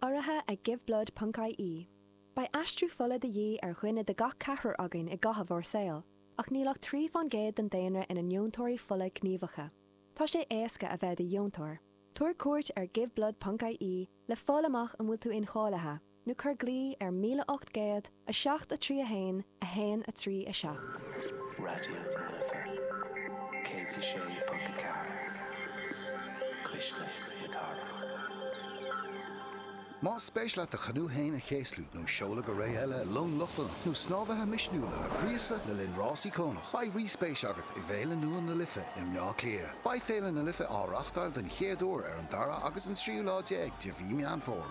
Urraithe ag Giveblood ponc IE. Beidh aistriú fola de dhíth ar dhuine de gach ceathrar againn i gcaitheamh ár saol, ach níl ach trí fán gcéad den daonra ina ndeontóirí fola gníomhacha. Tá sé éasca a bheith i do dheontóir. Tabhair cuairt ar Giveblood ponc IE le fáil amach an bhfuil tú incháilithe. nó cuir glao ar 1800 731 137. Raidió na Life 106.4 Cuisle na Cathrach. Más spéis leat do chanú féin a chéaslú nó seoladh go ré eile i long Lochlannach nó snámhaithe misniúla a ghríosadh le linn rás íocónach, beidh ríspéis agat i bhFéile nua na Life i mBleá Cliath. Beidh Féile na Life á reáchtáil den chéad uair ar an 2ú agus an 13ú lá de mhí Meán Fómhair.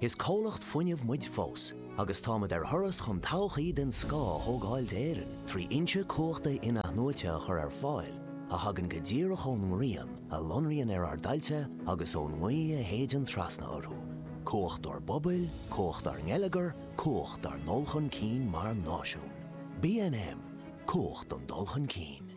Is comhlacht fuinnimh muid fós agus táimid ar thuras chun todhchaí den scoth a thógáil d'Éirinn trí fhoinse cumhachta in-athnuaite a chur ar fáil a thagann go díreach ón ngrian a lonraíonn ar ár dtailte agus ón ngaoth a shéideann trasna orthu. Cumhacht dár bpobail, cumhacht dár ngeilleagar, cumhacht dár ndul chun cinn mar náisiún. BNM, Cumhacht don dul chun cinn.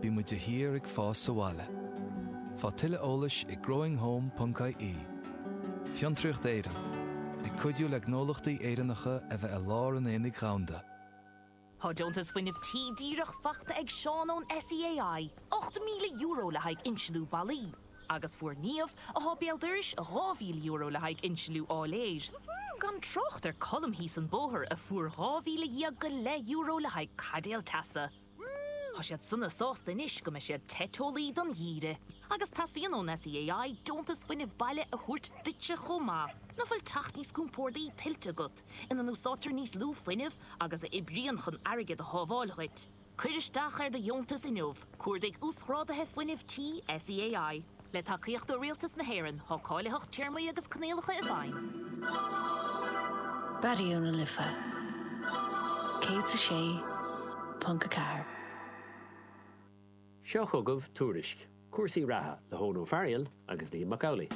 Bímid de shíor ag fás sa bhaile. Faigh tuilleadh eolais ag growinghome.ie Fiontraíocht Éireann, ag cuidiú le gnólachtaí Éireannacha a bheith i lár an aonaigh dhomhanda. Tá deontas fuinnimh tí díreach faighte ag Seán ón SEAI, €8,000 le haghaidh insliú ballaí, agus fuair Niamh, athá béal dorais, €2,000 le haghaidh insliú áiléir. Gan trácht ar Colm thíos an bóthar, a fuair 12,000 go leith euro le haghaidh caidéal teasa. Tá siad sona sásta anois go mbeidh siad te teolaí don gheimhreadh. Agus teastaíonn ón SEAI deontas fuinnimh baile a thabhairt duitse chomh maith. Nach bhfuil teach níos compórdaí tuillte agat, ina n-úsáidtear níos lú fuinnimh agus a oibríonn chun airgead a shábháil dhuit? Cuir isteach ar do dheontas inniu, cuardaigh Uasghráduithe Fuinnimh Tí SEAI. Le tacaíocht ó Rialtas na hÉireann, tá cáilitheacht téarmaí agus coinníollacha i bhfeidhm. Raidió na Life 106.4. Seo chugaibh Tuairisc cúrsaí reatha le hEoghan Ó Fearghail agus Liam Mac Amhlaigh.